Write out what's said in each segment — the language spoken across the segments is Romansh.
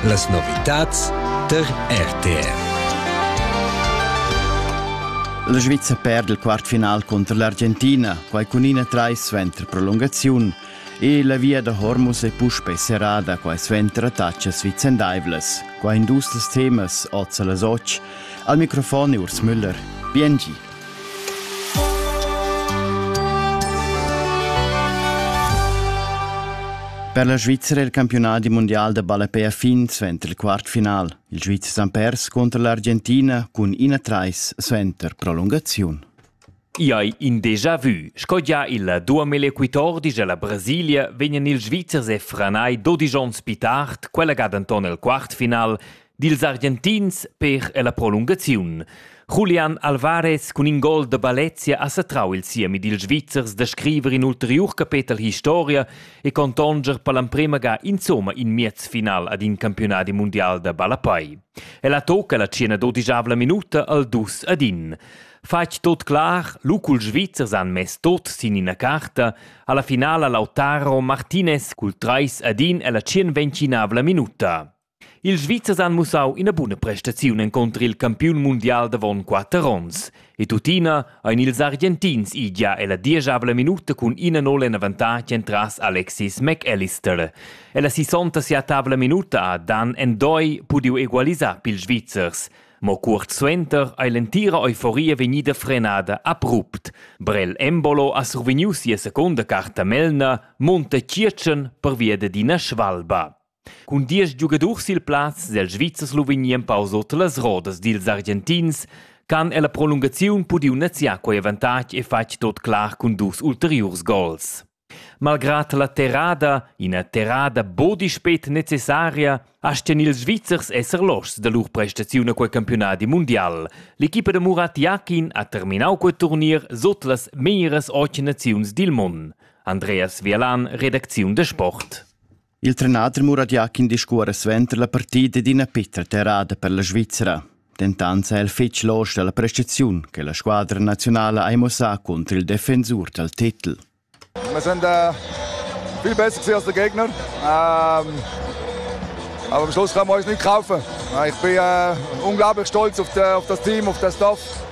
Las novitads tar RTR. La Sviza perd il quartfinal contro l'Argentina, quai cun ina trais suenter prolungaziun. E la via da Hormuz è puspè serrada, quai suenter attacas vicendaivlas. Quai in dus temas oz a las 8. Al microfon è Urs Müller. Biengi. Per la Svizra è il campionadi mundial da ballapè a fin suenter il quartfinal. Il Svizzer han pers contro l'Argentina cun ina trais suenter prolungaziun. I hai in déjà vu. Sco gia il duamillequitor dice la Brasilia vegnan ils Svizzers e Franai dodisch onns più tard, quella ga denton il quartfinal, dils Argentins per ella prolungaziun. Julian Alvarez cun in gol da Balezia ha satrau il siemi dils Svizzers da scriver in ulteriur capetel historia e contonger per l'emprema ga insomma in miez final ad in campionadi mundial da ballapai. Ella tocca la cena dodigiavla minuta al dus ad in. Fatg tot clar, lucul Svizzers han mess tot sin ina carta, alla finala Lautaro Martinez cul trais ad in ella tschien ventinavla minuta. Ils Svizzers han mussau ina buna prestaziun encunter il campiun mundial davon quater onns. E tuttina ein ils Argentins idia ella dieschavla minuta cun ina nol en avantatg entras Alexis McAllister. Ella sisonta sia tavla minuta ha Dan Endoi pudiu egualisar pils Svizzers. Mo cuort suenter ei l'entira euforia vegnida frenada abrupt. Brel Embolo ha survegniu sia secunda carta Melna, Monte Circen pervia d'ina svalba. Cun diesch giugadurs sil plaz sil Svizzer Sloveni empau sut las rodas dils Argentins han ella prolungaziun pudiu neziar quei avantatg e fatg tot clar cun dus ulteriurs gols. Malgrad la terrada, ina terrada buca spet necessaria, astgan ils Svizzers esser loschs da lur prestaziun a quei campiunadi mundial. L'equipa da Murat Jakin ha terminau quei turnier sut las meras otg naziuns dil mund. Andreas Vialan, redacziun da sport. Il trenader Muradiak indiscuora suenter la partida d'ina pitra terrada per la Svizzera. Dentant è el fitg losch dalla prestaziun che la squadra nazionala ha mossà contro il defensur dal titel. Wir sind äh, viel besser gewesen als der Gegner. Ähm, aber am Schluss kann man uns nicht kaufen. Ich bin äh, unglaublich stolz auf, die, auf das Team, auf das Dorf.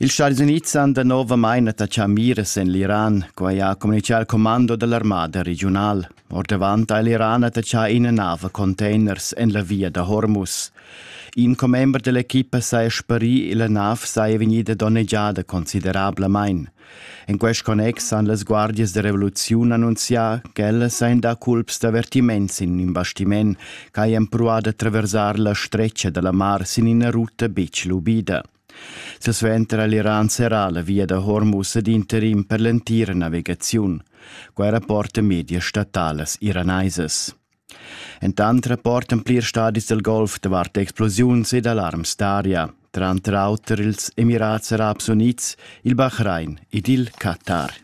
Ils Stadis Unids han danovamain attachà miras en l'Iran, quai ha communitgà il commando da l'armada regiunal. Ordavant ha l'Iran attachà ina nav a containers en la via da Hormuz. In commember dell'equipa saja sparì e la nav saja vegnida donnegiada considerablamain. En quest connex han las guardias da revoluziun annunzià ch'ellas ein da culps d'avvertiments in in bastiment ch'hajan pruà da traversar la stretga da la mar sin ina ruta betg lubida. Silsuenter ha l'Iran serrà la via da Hormuz ad interim per l'entira navigaziun. Quai rapportan medias statalas iranaisas. Entant rapportan plir stadis del Golf davart explosiuns ed alarms d'aria, tranter auter ils Emirats Arabs Unids, il Bahrain ed il Qatar.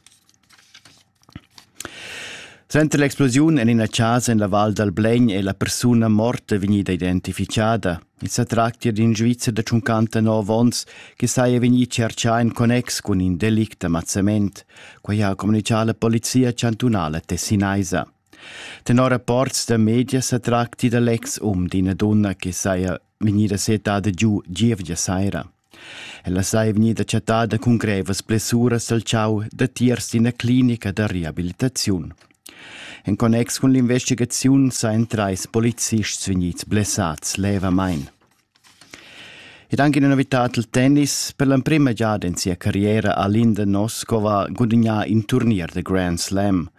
Suenter l'explosiun en ina chasa en la val dal Blegn è la persuna morta vegnida identificada. I sa tractia d'in Svizzer da 59 onns che saja vegnì tschertgà en connex cun in delict d'ammazzament. Quai ha communitgà la polizia chantunala tessinaisa. Tenor rapports da media sa tracti da l'ex um d'ina dunna che saja vegnida setada giu gievgia saira. Ella sai vegnida chattada cun grevas blessuras dal chau datiers d'ina clinica da reabilitaziun. En connex cun l'investigaziun sain trais policists vegnids blessads levamain. Ed anche una novità al tennis, per l'emprima giada in sia carriera a Linda Noskova gudagnà in turnier da Grand Slam –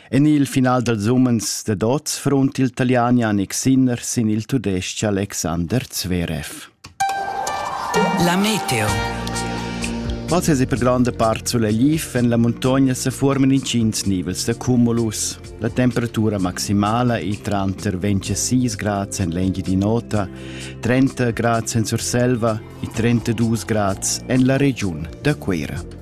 En il final dals umens dad oz frunt il Taliani Annik Sinner sin il tudestg Alexander Zverev. La meteo. Ma se per grande parte sulla Lif en la montagna se formano incins nivels da cumulus. La temperatura maximala è tranter 26 grad en l'enghi di nota, 30 grad en Surselva e 32 grad en la region da Cuera.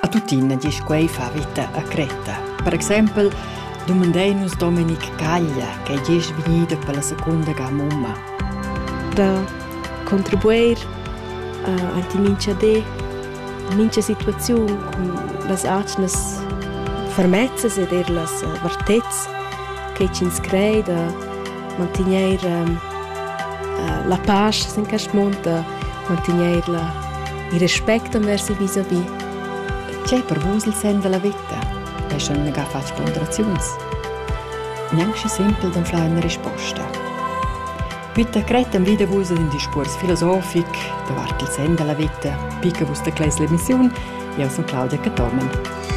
A tuttina diesch quei fa vita a Creta. Per exempel dumandein nus Dominic Caglia che diesch vegnida per la secunda ga mumma. Da contribuir uh, ai ti mincha di mincha situaziun cun las atgnas fermezzas ed er las vartezs che ch'ins crei da mantegnair ehm, eh, la pasch sin quest mund, mantegnair la, il respect envers il vis-à-vis. Tgei per vus il sen della vita? È schon negar fatg ponderaziuns. Neanche simpel d'anflar una risposta. Bitte cretem vide vus in discurs filosofic davart il sen della vita, picca vus da Clesle Mission, io sono Claudia Catorman.